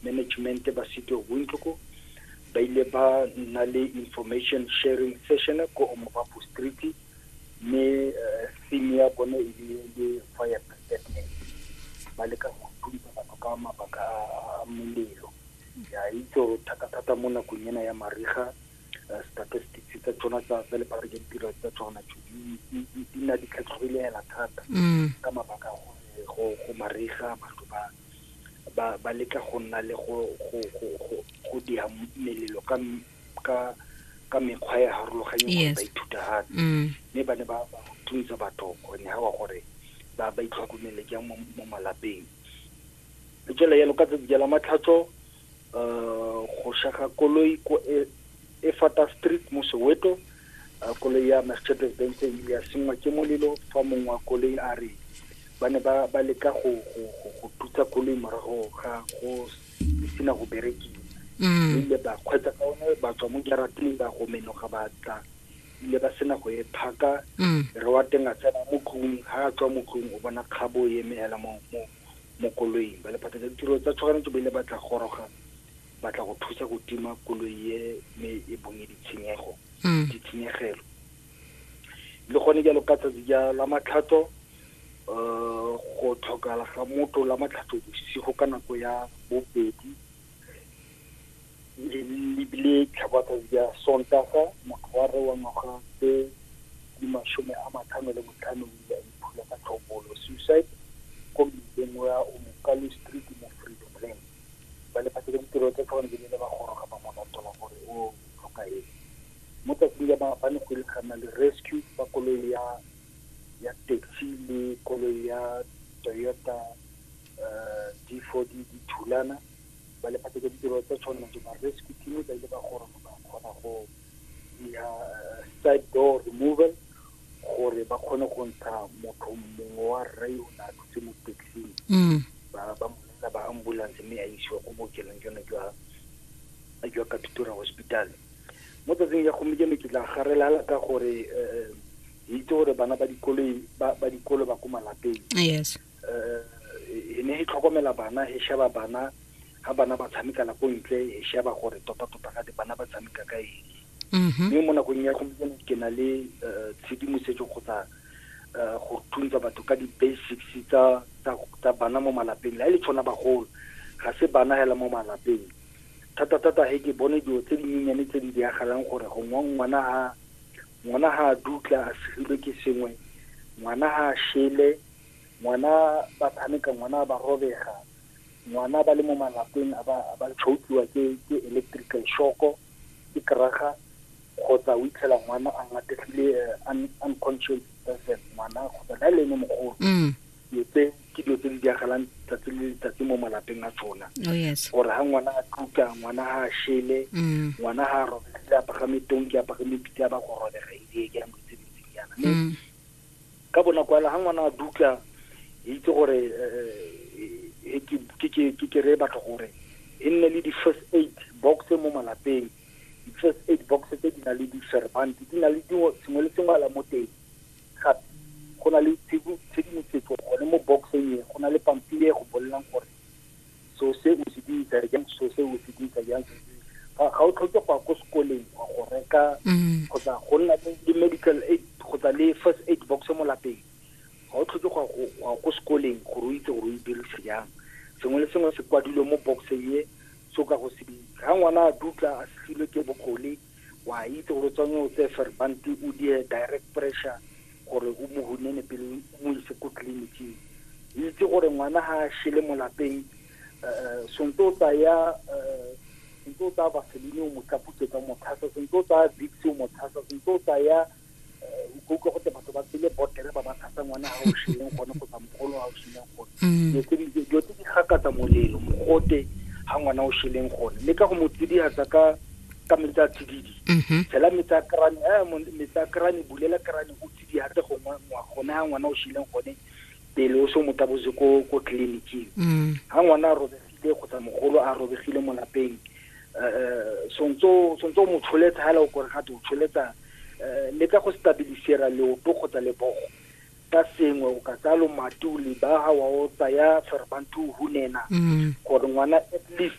management ba City of Windhoek ba ile ba nna le information sharing session ko Omobapo Street mme eh, theme ya bone e le le fire preparedness ba leka go thusa batho ka mabaka a molelo ya itse gore thata-thata mo nakong ena ya mariga eh, statistics tsa tsona tsa tsa lephata ke ditiro tsa tsona tso di- di- di di nna di tlhatlhogile hela thata mm. ka mabaka a gore go go mariga batho ba ba ba letla go nna le go go go go go dia melelo ka ka ka mekgwa e harologanye gore ba ithuta gape mm. mme ba ne ba thuntsa batho gone ga wa gore ba ba itlhokomele jang mo malapeng jela yalo ka tsatsi la matlhatso go shaga koloi ko e, efata street mo soweto uh, koloi ya mercedes benz ile ya sengwa ke molelo fa mongwe wa koloi a re ba ne ba ba leka go go go go tutsa koloi morago ga go sena go berekiwa mm. ile ba kgwetsa ka one ba tswa mo jarateng ba go menoga ba tla ile ba sena go e phaka mm. re wa teng a tsena mo tlung ha a tswa mo tlung o bona kgabo e eme hela mo mo mo koloing ba lephata tsa ditiro tsa tshoganyetso ba ile ba tla goroga ba tla go thusa go tima koloi e me e bonye ditshenyego mm. ditshenyegelo le gone jalo ka tsatsi ja la matlhatso um go tlhokala ga motho la matlhatso bosigo ka nako ya bobedi lebile tlhabatsatsi ya sontaga motho wa re wa ngwaga tse di masome a matlhano le botlhano ile a iphula ka tlhobolo suicide ko mmileng wa omokalo street mo freedom lane ba lefatshe le ditiro tsa tlhogane di ne le ba goroga ba molatola gore o tlhoka eng mo tsatsing ya maabane go ile gana le rescue ba koloi ya ya taxi le koloi ya toyota uh, difodi dithulana ba le phatsa ditiro tsa tshwanelo tse ba rescue team ba ile ba gore ba kgona go dira uh, side door removal gore ba kgone go ntsha motho mongwe wa rre o ne a thutse mo taxing mm. ba ba mmela ba ambulance mme a isiwa ko bookelong jone jwa jwa katutura hospital mo tsatsing ya gompieno ke tla garelala ka gore um itse gore bana ba dikolo ba dikolo ba ko malapeng yes eh, e ne e tlhokomela bana e sheba bana ga bana ba tshamekela ko ntle e sheba gore tota-tota ga di bana ba tshameka ka eng mm-hmm. mme mo nakong ya gompieno ke na le eh, tshedimosetso kgotsa eh, go thuntsa batho ka di-basics tsa bana mo malapeng la e le tshwana bagolo ga se bana hela mo malapeng thata-thata he ke bone dilo tse dinyenyane tse di diragalang gore gongwe ngwana ha ngwana ha a dutla a segilwe ke sengwe ngwana ha a shele ngwana ba tshameka ngwana ba robega ngwana ba le mo malapeng a ba a ba chokiwa ke ke electrical shoko ke kraga kgotsa o itlhela ngwana a ngategile eh, unconscious person ngwana kgotsa la le ene mogolo mm. dilo tse ke dilo tse di diragalang tsatsi le letsatsi mo malapeng a tsona oh, gore ga ngwana a tluka ngwana ga a shele mm. ngwana ga a robegile a pagame tonki a pagame pitse a ba go robega e ke ya mo tse di tse yana mm. Ka bonako hela ha ngwana a dutla e itse gore ke kere batho gore e nne le di-first aid box mo malapeng di-first aid box tse di na le di-servant di na le dingwe sengwe le sengwe ala mo teng gape go na le tshedimosetso gone mo boxeng e go na le pampiri e go bolelang gore so se o se dirisa jang so se o se dirisa jang ga o tlhoke go ya ko sekoleng wa go reka mm. kgotsa go nna le medical aid kgotsa le first aid box mo lapeng ga o tlhoke go ya ko sekoleng gore o itse gore o e dirisa jang sengwe le sengwe se kwadilwe mo box ye so ka go se ga ngwana a dutla a setlhilwe ke bokgole wa itse gore tsone o tse ferbante o die direct pressure gore o mo hunene pele o mo ise ko tleliniking itse gore ngwana ga a shele mo lapeng um sonte o tsaya um sonte o tsaya vaseline o mo tlaputsetsa o mo tshasa sonte o tsaya vicks o mo tshasa sonte o tsaya utlwa gote batho ba tsele botere ba ba thasa ngwana ga o shileng gone kgotsa mogolo ga o shileng gone mm. dilo tse di gakatsa molelo mogote ga ngwana o shileng gone le ka go mo tsidiatsa ka ka metsi a tsididi mm-hmm. tshela metsi a krane eh, metsi a krane bulela krane o tsidiatse gone ga ngwana o shileng gone pele o se mo tabose ko ko tleliniking ga mm. ngwana a robegile kgotsa mogolo a robegile mo lapeng um eh, eh, sontse o mo tsholetsa ga ele o kore gate o tsholetsa Eh, le ka go stabilisera leoto kgotsa lebogo ka sengwe o ka tsaya lomatu lebaga wa o tsaya tshweremanthu o hunena mm. gore ngwana at least